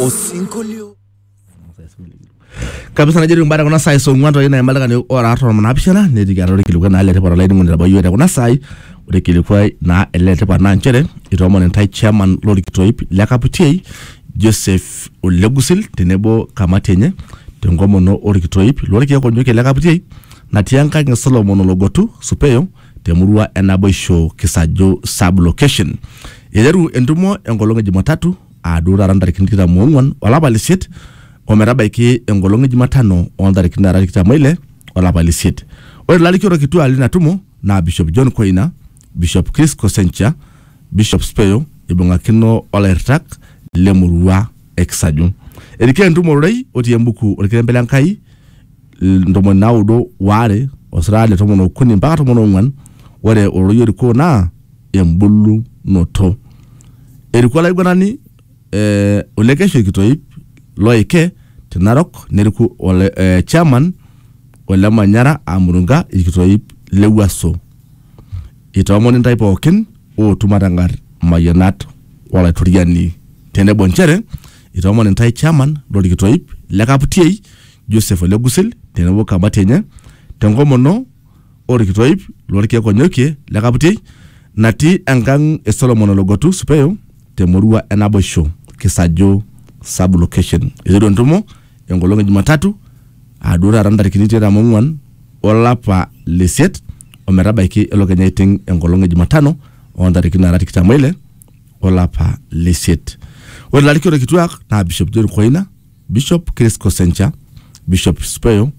Osinkolio. kabisa najo etiu mbata kuna saai song'uan toi naima oltung'ani ora artam naapishana netii atua orkilikuai naa letipat olainining'oni etabayie te kuna saai ore kilikuai naa ele letipat naa nchere itoomon intae chairman lorkitoip le kaputiei Joseph Olegusil tenebo kamati enye tenkomono orkitoip lorkiek onyokie le kaputiei natii enkang e Solomon Ologotu Supeyo te murua e Naboisho Kisaju sub location. Eiteru entumo enkolong e Jumatatu aa duo taata ntarikini tikitam oong'uan olapa le isiet o metabaiki enkolong e Jumatano oo ntarikini naara tikitam oile olapa le isiet. Ore ilarikito kituaak lina tumo naa Bishop John Koina, Bishop Chris Kosencha, Bishop Speyo eibung'akino olairritak le murua e Kisaju. Erikoo entumo ororei otii embuku Olkilembe le Nkai ntomoni naudo waare osirata le tomon okuni mpaka tomon ong'uan, ore ororei orikoo naa embulunoto. Eriku olaiguanani eh, olekeshua kitoip loike te Narok neriku ole, eh, chairman ole Manyara aa Murunga ilkitoip le Wuaso. Itoomoni ntae pookin ootu matang'ar mayianat o Laitoriani tenebo nchere itoomon intae chairman lo lkitoip le Kaputiei Joseph Ole Gusil tenebo kamati enye tenkomono orkito oip lorkeek onyokie le Kaputiei natii enkang e Solomon Ologotu Supeyo te murua e Naboisho Kisaju sub location. Eiteru entumo enkolong e Jumatatu aa duo taata ntarikini tikitam ong'uan olapa le isiet o metabaiki elo kenya aiting enkolong e Jumatano oo ntarikini naara tikitam oile olapa le isiet. Ore ilarikito kituaak naa Bishop John Koina Bishop Chris Kosencha, Bishop Speyo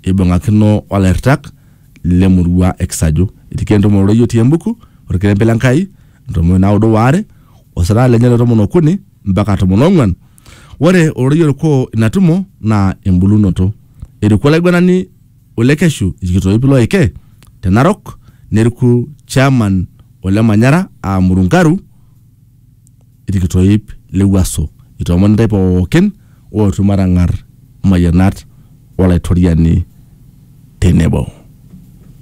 eibung'akino olairtak lemurua e Kisaju. Itikia entumo ororei otii embuku orkerembe le Nkai ntomoni naudo waare osirata lenye le tomon okuni mpaka tomon ong'uan. Ore ororei orikoo ina tumo naa embulunoto. Eriku olaiguanani ole Keshu ilkitoip looike te Narok neriku chairman ole Manyara aa Murungaru ilkitoip le wuaso, itoomon intae pooki ootu matang'ar imayianat o Laitoriani tenebo.